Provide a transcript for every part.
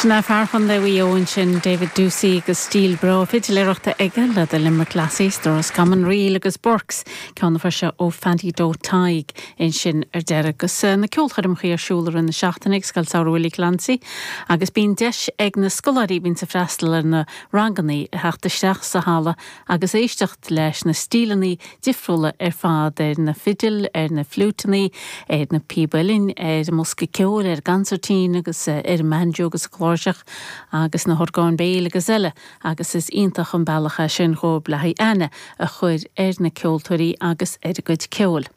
Sin é fear Chondae Mhaigh Eo ansin, David Doocey agus stíl bhreá fidiléireachta aige le The Limerick Lassies, The Roscommon Reel agus Burke's, ceann a fuair sé ó Phaddy Doherty ansin ar deireadh. Agus na ceolchoirmeacha ar siúl i rith na seachtaine ag Scoil Samhraidh Willie Clancy agus bíonn deis ag na scoláirí a bhíonns ag freastal ar na ranganna a theacht isteach sa halla agus éisteacht leis na stíleanna difriúla ar fad, ar na fidil, ar na fliúiteanna, ar na píb uilleann, ar an mbosca ceoil, ar an gconsairtín agus ar an mbanjo agus an chláirseach agus na horgáin béil agus eile agus is iontach an bealach é sin dhóibh le haghaidh aithne a chur ar na ceoltóirí agus ar a gcuid ceoil.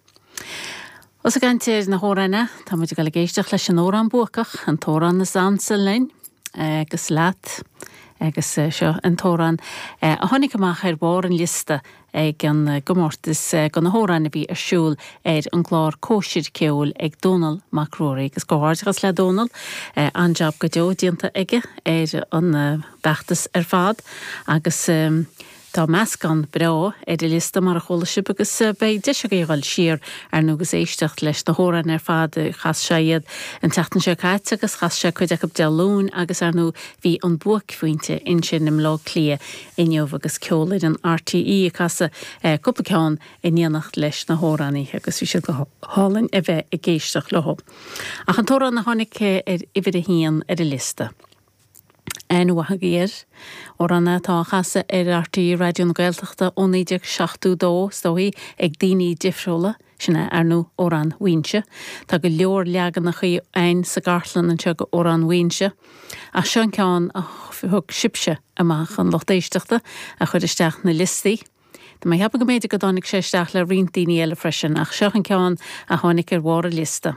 Ós ag caint ar na hamhráin, tá muid ag dul ag éisteacht leis an amhrán buacach, an t-amhrán is ansa linn agus leat, agus seo an t-amhrán a tháinig amach ar bharr an liosta ag an gcomórtas do na hamhráin a bhí ar siúl ar an gclár Cóisir Ceoil ag Dónall Mac Ruairí, agus comhghairdeachas le Dónall, an-jab go deo déanta aige ar an bhfeachtas ar fad agus. Tá meascán breá ar an liosta, mar a chuala sibh, agus beidh deis agaibh a dhul siar, ar ndóigh, agus éisteacht leis na hamhráin ar fad. Chas sé iad an tseachtain seo caite agus chas sé cuid acu Dé Luain agus, ar ndóigh, bhí an buaicphointe ansin i mBleá Cliath inniu agus Ceolfhoireann RTÉ ag casadh cúpla ceann in éineacht leis na hamhránaithe agus bhí siad go hálainn a bheith ag éisteacht leo. Ach an t-amhrán a tháinig ar uimhir a haon ar an liosta. Aon ionadh gur amhrán atá á chasadh ar RTÉ Raidió na Gaeltachta ó 1972, is dóigh, ag daoine difriúla, sin é, ar ndóigh, Amhrán Mhaínse. Tá go leor leaganachaí a'ainn sa gcartlann anseo go Amhrán Mhaínse, ach seo an ceann a thug sibse amach, an lucht éisteachta a chuir isteach na liostaí. Tá mé a cheapadh go mb'fhéidir go dtáinig sé isteach le roinnt daoine eile freisin, ach seo an ceann a tháinig ar bharr an liosta.